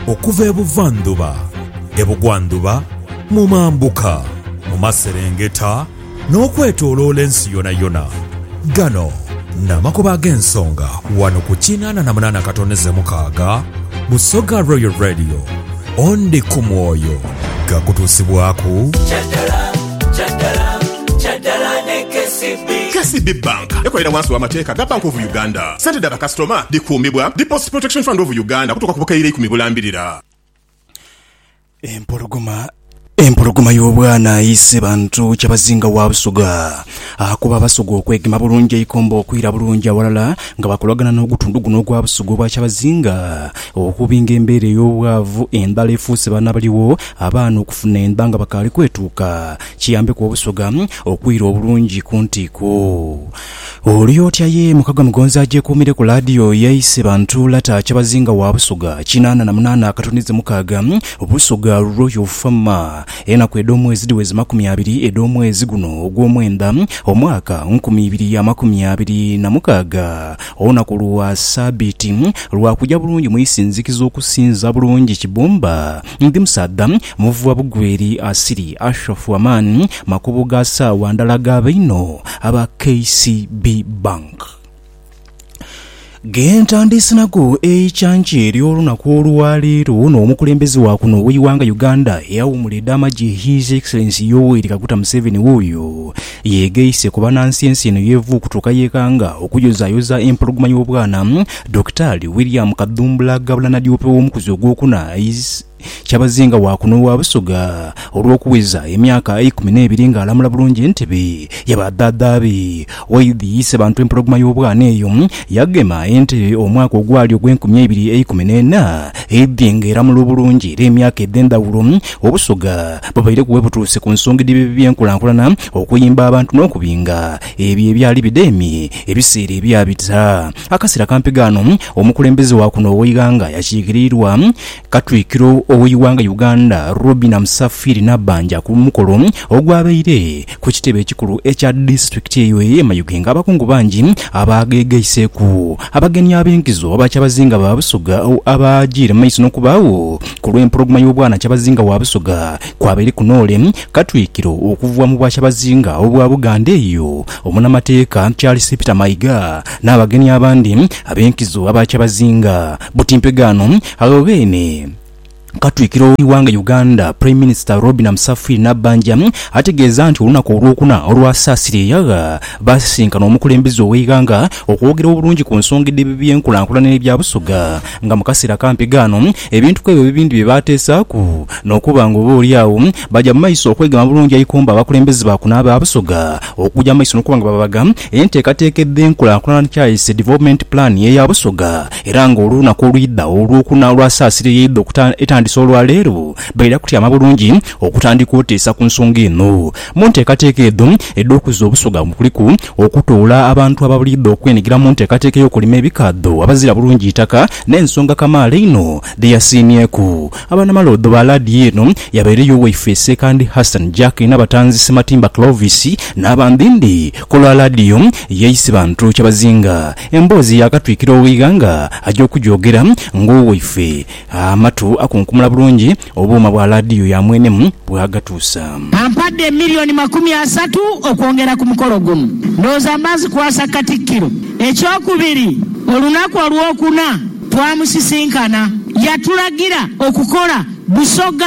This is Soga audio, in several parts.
Okuva ebuvandhuba, ebugwandhuba, mu mambuka, mu maserengeta, n'okwetoloola ensi yonayona. Gano n'amakubo ag'ensonga wano ku kinaana na munaana katoneze mukaaga Busoga Royal Radio. Ondi ku mwoyo gakutuusibwaku? Kyadala ne KCB. KCB Bank ekolera wansi wa mateeka ga Bank of Uganda. Sente dha bakasitoma dhikuumibwa Deposit Protection Fund of Uganda okutuuka ku bukaire eikumi bulambirira. Empologoma Empologoma y'obwana eise bantu kyabazinga wa Busoga. Akuba Abasoga okwegema bulungi eikomba okwira bulungi awalala nga bakolagana n'ogutundu guno ogwa Busoga obwa Kyabazinga okubi ng'embeera ey'obwavu endhala efuuse baana abaliwo abaana okufuna endha nga bakaali kwetuuka Kiyambeku Obusoga okwira obulungi ku ntiiko. Oli otya ye mukago Mugonza agyekuumire ku laadiyo ye ise bantu lata Kyabazinga wa Busoga kinaana na munaana akatundhize mukaaga Busoga Royal Farmer Enaku edh'omwezi dhiweze makumi abiri edh'omwezi guno ogw'omwenda omwaka nkumi ibiri amakumi abiri na mukaaga Olunaku lwa Sabiiti lwa kugya bulungi mu isinzikizo okusinza bulungi Kibumba Ndi musaadha muvu wa bugweri, asiri ashofu amaani, makubo ga saawa ndhala ga bainho aba KCB Bank. Ge ntandiise nago eikyankya ery'olunaku olwa leero n'omukulembeze wa kuno ow'eighanga Uganda eyawuumula edha magye His Excellency Yoweri Kaguta Museveni wuuyo Yeegaise ku banansiensi eno y'evu okutuuka yeekanga okuyozaayoza empologoma y'obwana, Dokitaali William Kadhumbula Gabula Nadiope ow'omukuzi ogwokuna is Kyabazinga wa kuno ogha Busoga olw'okuweza emyaka eikumi n'ebiri ng'alamula bulungi entebe ya ba dhaadha be. Waidhi Isebantu empologoma y'obwana eyo yagema entebe omwaka ogwali ogw'enkumi eibiri eikumi n'ena, eidhi ng'eramula obulungi era emyaka edh'endhawulo Obusoga Bubaireku we butuuse ku nsonga edh'ebibi by'enkulankulana, okuyimba abantu n'okubinga ebyo ebyali bidheemye ebiseera ebyabita. Akaseera kampi ghano, omukulembeze wa kuno ow'eighanga yakiikiriirwa Katwikiro ow'eighanga Uganda, Robinah Musafiiri Nabbanja ku mukolo ogwabaire Ku kitebe ekikulu ekya disitulikiti eyo eye Mayuge nga abakungu bangi abaagheghaiseeku abagenyi ab'enkizo aba Kyabazinga ba Busoga abaajiire mu maiso n'okubaagho ku lw'empologoma y'obwana Kyabazinga wa Busoga kw'abeereku Noole Katwikiro okuva mu Bwakyabazinga obwa Buganda eyo Omunamateeka Charles Peter Mayiga n'abagenyi abandi ab'enkizo aba Kyabazinga Butimpegano agho beene. Katwikiro w'eighanga Uganda Prime Minister Robinah Musafiri Nabbanja ategeeza nti olunaku olwokuna olwasaasira eyagha baasisinkana omukulembeze ow'eighanga okwogera obulungi ku nsonga edh'ebibyenkulankulana n'ebya Busoga nga mu kaseera akampi ghano ebintu kwebyo bibindi bye baateesaaku n'okuba nga oba olyagho baja mu maiso okwegema bulungi eikomba abakulembeze ba kuno aba Busoga okuja mu maiso n'okuba nga babaga enteekateeka edh'enkulankulana Chaice Development Plan eya Busoga Era nga olunaku olwidhagho Olwokuna olwa Saasira eyeidha okuta etandise olwa leero, baidha kutyama bulungi okutandika oteesa ku nsonga eno. Mu nteekateeka edho edh'okuzza Obusoga kuliku, okutoola abantu ababliidha okwenhigira mu nteekateeka ey'okulima ebikaadho abazira bulungi itaka n'ensonga kamaala einho dhe yasiimyeku Abanamaloodho ba laadiyo eno yabaire y'owaife Ssekandi Hassan Jack Nabatanzi Ssematimba Clovis n'abandhindhi ku lwa laadiyo ya Isibantu Kyabazinga Emboozi yaakatwikira ow'eighanga aja okujoogera ng'owaife. Amatu akunkumula bulungi obuuma bwa laadiyo ya mwene bw'agatuusa. Ampadde milioni makumi asatu okwongera ku mukolo guno. Ndowooza mba nzikwasa Katikkiro. Ekyokubiri, olunaku Olwokuna twamusisinkana, yatulagira okukola Busoga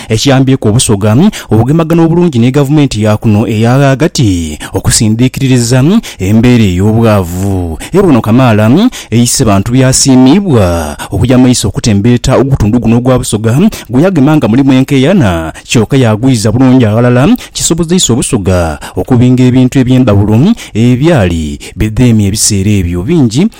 ekiyambyeku Obusoga okugemagana obulungi ni gavumenti ya kuno eya ghagati okusindiikiririza embeera ey'obwavu ebwono kamaala eise bantu by'asiimiibwa okuja mu maiso okutembeeta ogutundu guno ogwa Busoga gwe yagema nga mulimu enkeeyana kyoka yaagwiza bulungi aghalala kisobozeisa Obusoga okubinga ebintu eby'endhawulo ebyali bidheemye ebiseera ebyo bingi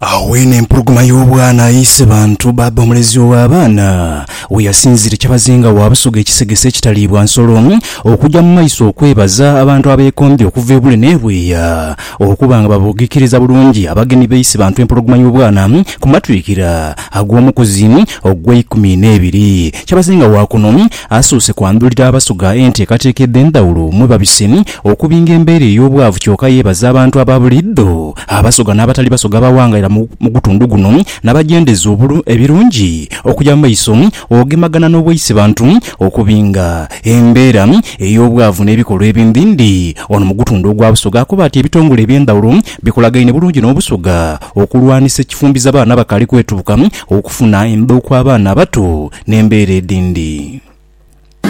Agho weene empologoma y'obwana aise bantu bbaabba omulezi ow'abaana we yasinziire kyabazinga wa Busoga ekisegese ekitaliibwa nsolo okugya mu maiso okwebaza abantu abeekombye okuva e Bule n'e Bweya okuba nga babugikiriza bulungi abagenyi b'aise bantu empologoma y'obwana ku matwikira ag'omukuzi ogw'eikumi n'ebiri. Kyabazinga wa kuno Asoose kwandhulira Abasuga enteekateeka edh'endhawulo mwe babise okubinga embeera ey'obwavu kyoka yeebaza abantu aba buliidho Abasoga n'abatali Basoga abawangalira mu gutundu guno nabagyendereza ebirungi okuja mu maiso ogemagana n'obwaise bantu okubinga embeera ey'obwavu n'ebikolwa ebindhindhi Ono mu gutundu ogwa Busoga akoba ati ebitongole eby'endhawulo bikolagaine bulungi n'Obusoga okulwanisa ekifumbiza baana abakaali kwetuuka okufuna endhoku abaana abato n'embeera edhindi.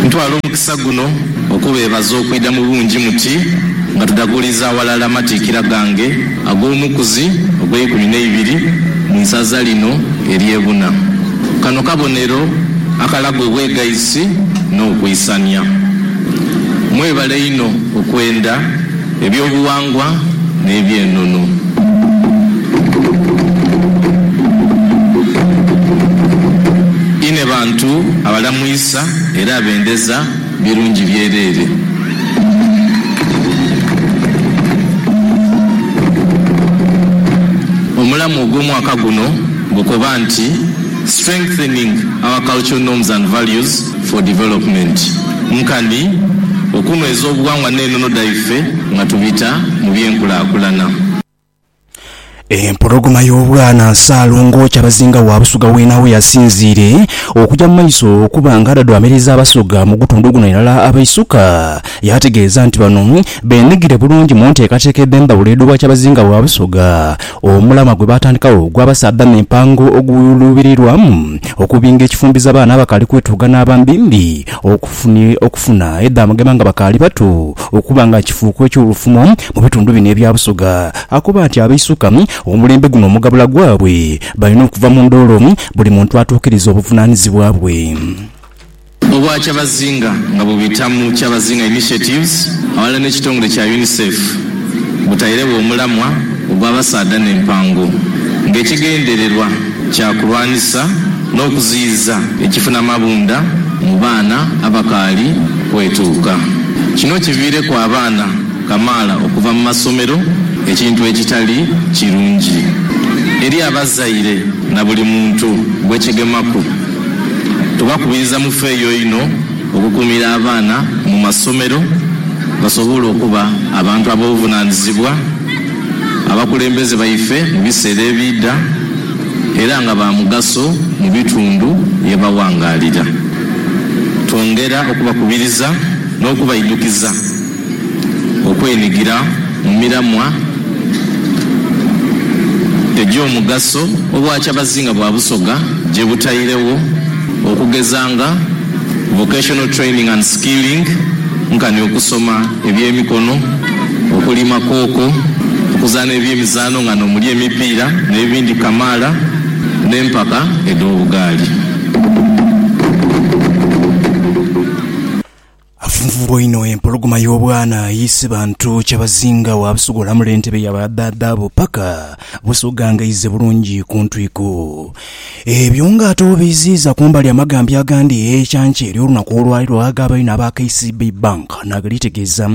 Ntwala omukisa guno okubeebaza okwidha mu bungi muti nga tudhaguliiza aghalala amatiikira gange ag'omukuzi ogw'eikumi n'eibiri mu isaza lino ery'e Buna. Kano kabonero akalaga obwegaisi n'okwisania. Mwebale inho okwenda. Eby'obuwangwa n'eby'enono. Inhe bantu abalamwisa era abendeza birungi byereere. Omulamwa ogw'omwaka guno gukoba nti Strengthening our Cultural Norms and Values. for Development nkani okunhweza obughangwa n'enono dhaife nga tubita mu by'enkulakulana. Empologoma y'obwana Ssaalongo Kyabazinga wa Busoga w'enhawo yasinziire okugya mu maiso okuba nga adhadhwaamiriza Abasoga mu gutundu guno irala abaisuka. Yaategeeza nti bano beenhigire bulungi mu nteekateeka edh'embabula edh'obwakyabazinga bwa Busoga Omulamwa gwe baatandikawo ogw'abasaadha n'empango oguluubirirwamu okubinga ekifumbiza abaana abakaali kwetuuga n'abambimbi okufuni okufuna edhamugema nga bakaali bato okuba nga kifuuko eky'olufumo mu bitundu bino ebya Busoga. Akoba nti abaisuka omulembe guno omugabula gwabwe balina okuva mu ndoolo buli muntu atuukirize obuvunaanizibwa bwe. Obwa kyabazinga nga bubita mu Kyabazinga Initiatives aghalala n'ekitongole kya UNICEF butairegho omulamwa ogw'abasaadha n'empango ng'ekigendererwa kya kulwanisa n'okuziyiza ekifuna mabunda mu baana abakaali kwetuuka. Kino kiviireku abaana kamaala okuva mu masomero ekintu ekitali kirungi eri abazaire na buli muntu gwekigemaku. Tubakubiriza mufeeyo inho okukuumira abaana mu masomero basobole okuba abantu ab'obuvunaanyizibwa, abakulembeze baife mu biseera ebiidha era nga ba mugaso mu bitundu ye baghangaalira. Twongera okubakubiriza n'okubaidhukiza. okwenhigira mu miramwa egy'omugaso Obwakyabazinga bwa Busoga gye butairegho okugeza nga Vocational Training and Skilling nkani okusoma eby'emikono, okulima kooko, okuzaana eby'emizaano nga n'omuli emipiira n'ebindi kamaala n'empaka edh'obugaali. Afunvubwa inho empologoma y'obwana ayiise bantu kyabazinga waabusogolamu lentebe ya badhaadhaabo paka busogangaize bulungi ku ntwiku. Ebyo nga ate obiiziiza kumbali amagambya agandi ekyankya ery'olunaku olwaleero ag'abaine aba KCB Bank nagalitegeeza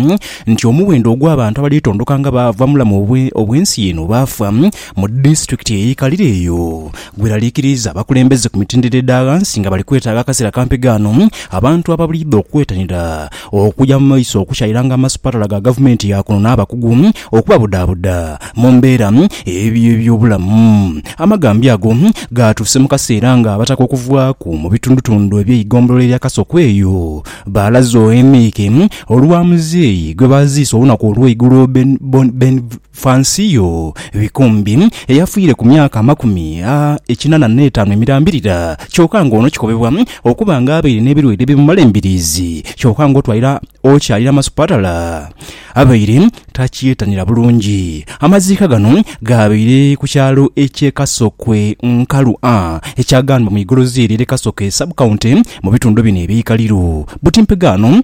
nti omuwendo ogw'abantu abalitondoka nga baava mubulamu obw'ensi eno baafa mu disitulikiti eyeikalira eyo Gweraliikiriiza abakulembeze ku mitendera edha ghansi nga bali kwetaaga akaseera kampi ghaano abantu ababuliidha okwetanira okuja mu maiso okukyairanga amasupatala ga gavumenti ya kuno n'abakugu okubabudaabuda mu mbeera ey'ebyobulamu. Amagambyo ago gaatuuse mu kaseera nga abataka okuvaaku mu bitundutundu eby'eigombolola erya Kasokweyo baalaze oemike olwa muzeeyi gwebaaziise olunaku olw'eigulo Ben Fansio Bikumbi eyafiire ku myaka amakumi a ekinana n'etaanu emirambirira kyoka nga ono kikobebwa okuba nga abaire n'ebirwaire ebimumala embiriizi kyoka nga otwalira okyalira masupatala abaire takyetanira bulungi. Amaziika gano gaabaire ku kyalo ekye Kasokwe Nkalu A ekya Gandhwa mu igorozi erye Kasokwe Sub County mu bitundu bino eby'eikaliro. Butimpega ano.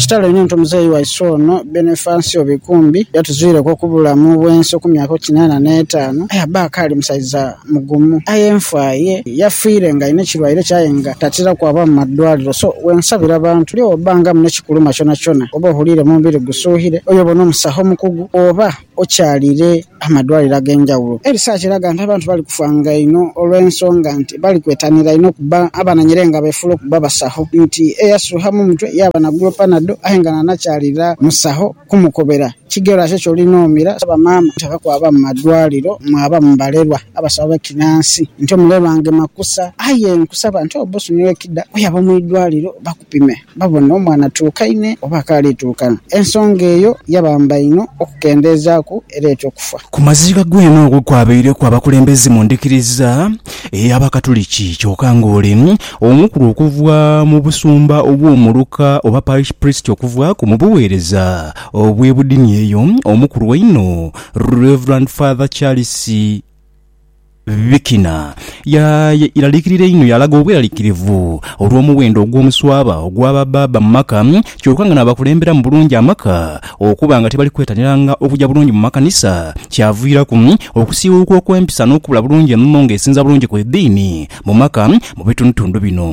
Kitalo inho nti omuzeeyi waisu ono Benefansio Bikumbi yatuzwireku okubulamu bwensi okumyaka oti kinaana n'etaanu aye abba akaali musaiza mugumu aye enfa ye yafiire nga alina ekirwaire kye aye nga tatera kwaba mu madwaliro so wensabira abantu buli owobbanga mune kikuluma kyonakyona oba ohuliire mu mubiri gusuuhire oyo obone omusaho omukugu oba Okyalire amadwaliro ag'enjawulo, erisaach eraga nti abantu bali kufaanga inho olw'ensonga nti bali kwetanira inho okuba abananyere nga befuula okuba abasaho nti eyasuuha mu mutwe yaaba nagula panado aye nga nanakyalira musaho kumukobera kigero aate kyolina omira. Asaba maama obutava kwaba mu madwaliro mwaba mu balerwa abasawo b'ekinansi nti omulerwa ngema kusa aye nkusaba nti oba osuniwa ekida oyaba mu idwaliro bapime babone omwana atuukaine oba akaali tuuka. Ensonga eyo yabamba inho okukendeezaaku ereeta okufa. Ku maziga gw'eno okwo kwabaireku abakulembeze mu ndhikiriza ey'Abakatuliki kyoka ng'ole omukulu okuva mu busumba obw'omuluka oba parish priest okuvaaku mu bugheereza obw'ebudini eyo omukulu einho Rev Father Charles Vikina yaralikirira inho yalaga obweralikirivu olw'omuwendo ogw'omuswaba ogwa ba baaba mu maka kyoka nga n'abakulemberamu bulungi amaka okuba nga tibali kwetaniranga okuja bulungi mu makanisa kyaviiraku okusiiwuuka okw'empisa n'okubula bulungi enono ng'esinza bulungi ku ediini mu maka mu bitundutundu bino.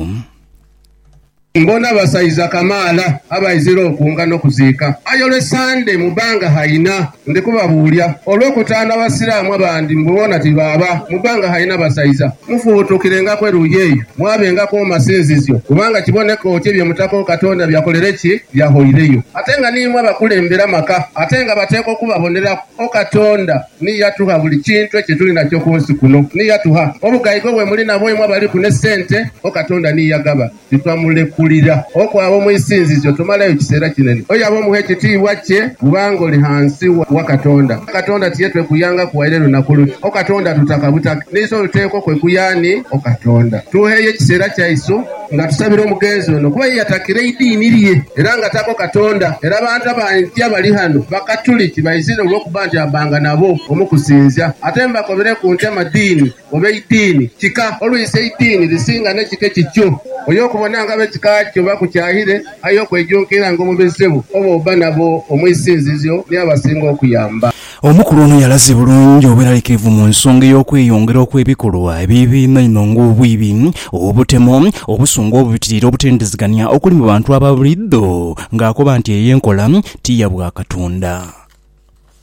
Mbona basaiza kamaala abaizira okunga n'okuziika. Aye olw'e Ssande mu bbanga haina ndi kubabuulya. Olw'okutaana Abasiraamu abandi mbu boona tibaaba, mu bbanga haina basaiza mufubutukirengaku eruuyi eyo mwabengaku mu masinzizyo, kubanga kiboneka oti ebyo Omutaka Katonda byakolere ki? Byahoireyo. Ate nga niimwe abakulembera amaka, ate nga bateekwa okubaboneraku, O Katonda! Ni yatugha buli kintu ekyetuli nakyo ku nsi kuno. Ni yatugha obugaiga obwe muli nabwo imwe abaliku ne sente. O Katonda ni yagaba, titwamulekulira. Oku abo mu isinzizyo tomalayo kiseera kinene. Oyo aba omugha ekitiibwa kye bw'uba ng'oli ghansi wa Katonda. Katonda tiye twekuyangaku waire lunaku luti, O Katonda, tutaka butake. N'eiso liteekwa okwekuya ani? O Katonda, tugheeyo ekiseera kyaisu. Nga tusabira omugenzi ono kuba ye yatakira eidiini lye era nga tako Katonda era abantu abangi abali ghano Bakatuliki baizire olwokuba nti abanga nabo omu kusinzia ate mbakobereku nti amadiini oba eidiini kika olwisi eidiini lisinga nekika ekikyo oyo okubona nga abekika kyo bakukyayire aye okwejunkira nga omubizibu oba oba nabo omwisinzizio niabasinga okuyamba. Omukulu ono yalaze bulungi obweralikirivu mu nsonga ey'okweyongera okw'ebikolwa ebibi einhoinho ng'obwibi, obutemo, obusungu obubitiriire, obutendizigania okuli mu bantu aba buliidho ng'akoba nti eyo enkola ti ya bwa Katonda.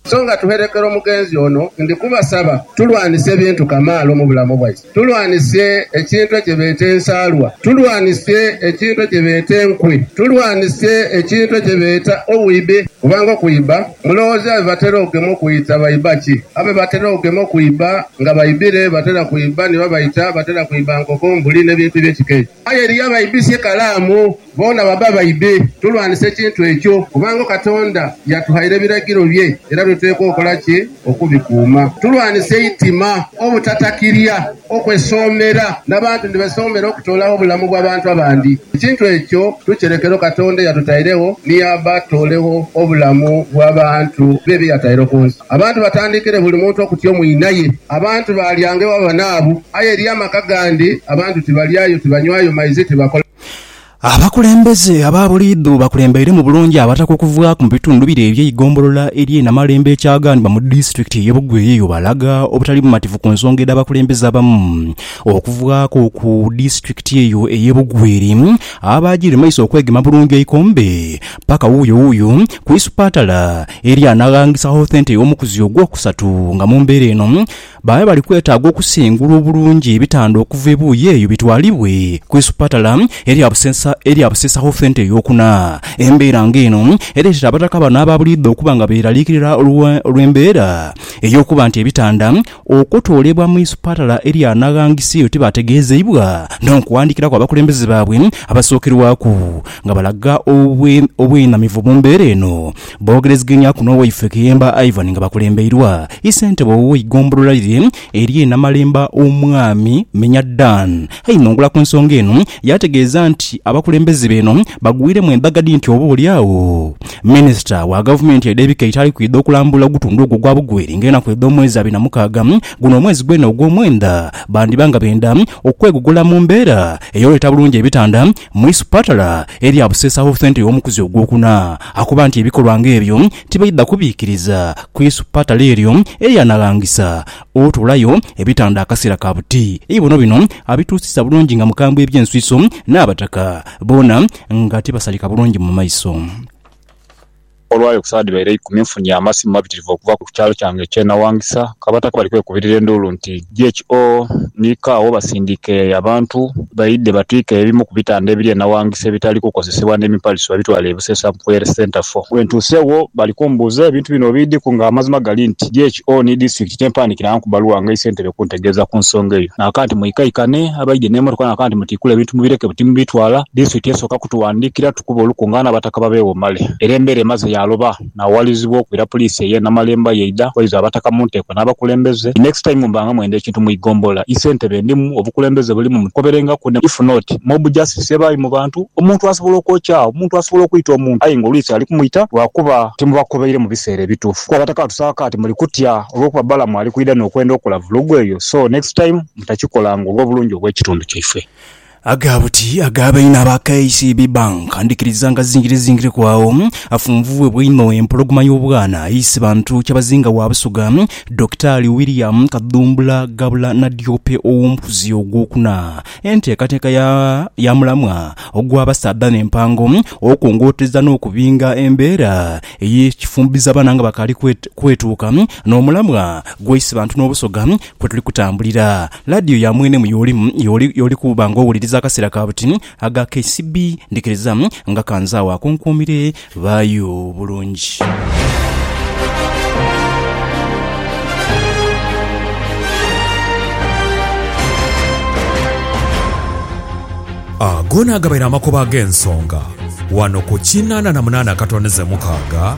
So nga tuherekera omugenzi ono, ndi kubasaba tulwanise ebintu kamaala omu bulamu bwaife. Tulwanise ekintu ekyebeeta ensaalwa. Tulwanise ekintu ekyebeeta enkwe. Tulwanise ekintu ekyebeeta obwibe, kubanga okwiba, mulowooza be batera okugema okwita baiba ki? Abe batera okugema okwiba nga baibire batera kwiba ni babaita, batera kwiba nkoko, mbuli n'ebintu eby'ekika ekyo. Aye eriyo abaibisa ekalaamu, boona baba baibi. Tulwanise ekintu ekyo, kubanga Katonda yatughaire ebiragiro bye era tuteekwa okola ki? Okubikuuma. Tulwanise eitima, obutatakirya, okwesoomera, n'abantu ni besoomera okutoolagho obulamu bw'abantu abandi. Ekintu ekyo tukirekero Katonda eyatutairegho ni yaaba atoolegho obulamu bw'abantu be bye yataire ku nsi. Abantu batandikire buli muntu okutyo mwinaye. Abantu baalyanga ewa banaabwe, aye eriyo amaka gandi abantu tibalyayo, tibanywayo maizi, tibakola. Abakulembeze aba buliidho bakulembeiremu bulungi Abataka okuvaaku mu bitundu bire eby'eigombolola ery'e Namalembe e Kyagandima mu disitulikiti y'e Bugoye yo balaga obutali bumativu ku nsonga edh'abakulembeze abamu okuvaaku ku disitulikiti eyo ey'e Bugweri abaagiire mu maiso okwegema bulungi eikombe paka wuuyo wuuyo ku isupatala Eli anaghangisa Hothente ey'omukuzi ogwokusatu nga mu mbeera eno babe bali kwetaaga okusengula obulungi ebitanda okuva ebuuyi eyo bitwalibwe ku isupatala erya Buseesa Hothente ey'okuna. Embeera nga eno ereetera abataka bano aba buliidho okuba nga beeraliikirira olw'embeera ey'okuba nti ebitanda Okutwalibwa mu isupatala erya Nagangisi eyo tibategeezeibwa n'okuwandiikiraku abakulembeze baabwe abasookerwaku nga balaga obwenamivu mu mbeera eno. Boogerezeganyaku n'owaife Kiyemba Ivan nga bakulembeirwa Isentebe ow'eigombolola lire erye Namalemba Omwami Minya Dan Ainongula ku nsonga eno yaategeeza nti abakulembeze beeno bagwiremu embaga dhi nti oba oli agho Minisita wa Gavumenti edh'ebika eitaali kwidha okulambula ogutundu ogwo ogwa Bugweri ng'enaku edh'omwezi abiri na mukaaga guno omwezi gwena ogw'omwenda bandiba nga benda okwegogola mu mbeera ey'oleeta bulungi ebitanda mu isupatala erya Buseesa Health Centre y'omukuzi ogwokuna akoba nti ebikolwa ng'ebyo tibaidha kubiikiriza ku isupatala eryo eryanaghangisa Otoolayo ebitanda akaseera ka buti. Eibono bino abituusizza bulungi nga mukambwe eby'enswiso n'abataka boona nga tibasalika bulungi mu maiso. Olwayo ku sawa dhibaire eikumi nfunye amasimu mabitirivu okuva ku kyalo kyange eky'e Nawangisa ng'abataka bali kwekubirira enduulu nti, GHO, Niiko agho basindiike abantu! Baidhe batwike ebimu ku bitanda ebiri e Nawangisa ebitali kukozesebwa n'emipaliso babitwale e Busesa mu Prayer Centre fo. Bwentuusegho bali kumbuuza ebintu bino obiidhiku nga amazima gali nti DHO ni disitulikiti tempandikirangaku bbaluwa nga eisentebe kuntegeeza ku nsonga eyo naaka nti mwikaikane abaidhe n'emotoka naaka nti mutiikule ebintu mubireke buti mubitwala disitulikiti esooka kutuwandiikira tukube olukungaana abataka babeewo male era embeera emaze yaaloba. naawalilizibwa okwira Puliisi ey'e Namalemba yaidha kwaiza Abataka mu nteeko n'abakulembeze. The next time mbanga mwenda ekintu mu Igombola, ise ntebe ndimu, obukulembeze bulimu mutukoberengaku ne if not Mob Justice ebaayo mu bantu, omuntu asobola okwokya, omuntu asobola okwita omuntu aye nga olwisi ali kumwita lwakuba timubakobeire mu biseera ebituufu kuba Abataka batusaba kaati muli kutya olwokuba Balamu ali kwidha n'okwenda okola vulugu eyo so next time mutakikolanga olw'obulungi obw'ekitundu kyaifwe. Aga buti aga baine aba KCB Bank ndikiriza nga zingire zingireku agho afunvubwebwa einho empologoma y'obwana aise bantu Kyabazinga wa Busoga Dokitaali William Kadhumbula Gabula Nadiope ow'omukuzi ogwokuna enteekateeka ya ya mulamwa ogw'abasaadha n'empango okwongootereza n'okubinga embeera ey'ekifumbizabaana nga bakaali kwetuuka n'omulamwa gwaise bantu n'Obusoga kwe tuli kutambulira. Laadiyo ya mwene mu y'oli y'oli y'oli kuba nga owuliriza akaseera ka buti aga KCB. Ndhikiriza nga kanze agho akunkuumire. Baayo bulungi. Ago naagabaire amakubo ag'ensonga wano ku kinana na munana akatondeze mukaaga.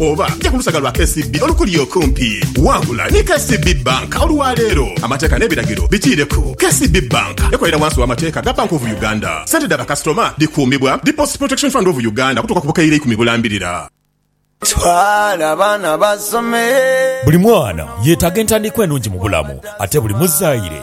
Oba ja ku lusaga lwa KCB olukuli okumpi. Wangula ni KCB Bank olwa leero. Amateeka n'ebiragiro bikiireku. KCB Bank ekolera wansi w'amateeka ga Bank of Uganda. Sente dha bakasitoma dhikuumibwa Deposit Protection Fund of Uganda okutuuka ku bukaire ikumi bulambirira. Twala abaana basome. Buli mwana yetaaga entandikwa enungi mu bulamu ate buli muzaire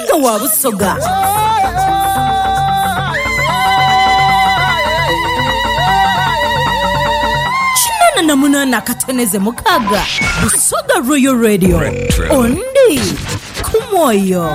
Omusaadha wa Busoga. Kinana na munana akateneze mukaga. Busoga Royal Radio. Ondi kumwoyo.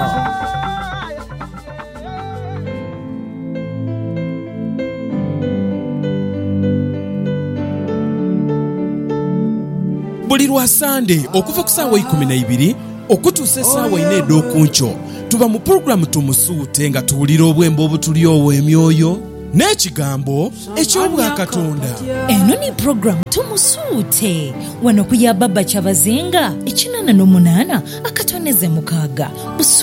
buli lwa sande okuva ku saawa ikumi na ibiri Okutuusa esaawa inha edh'oku nkyo, tuba mu pulogulaamu Tumusuute nga tuwulira obwembo obutulyowa emyoyo n'ekigambo eky'Obwakatonda. Eno ni pulogulaamu Tumusuute. Wano ku ya Baba Kyabazinga, ekinana n'omunana akatondeze mukaaga.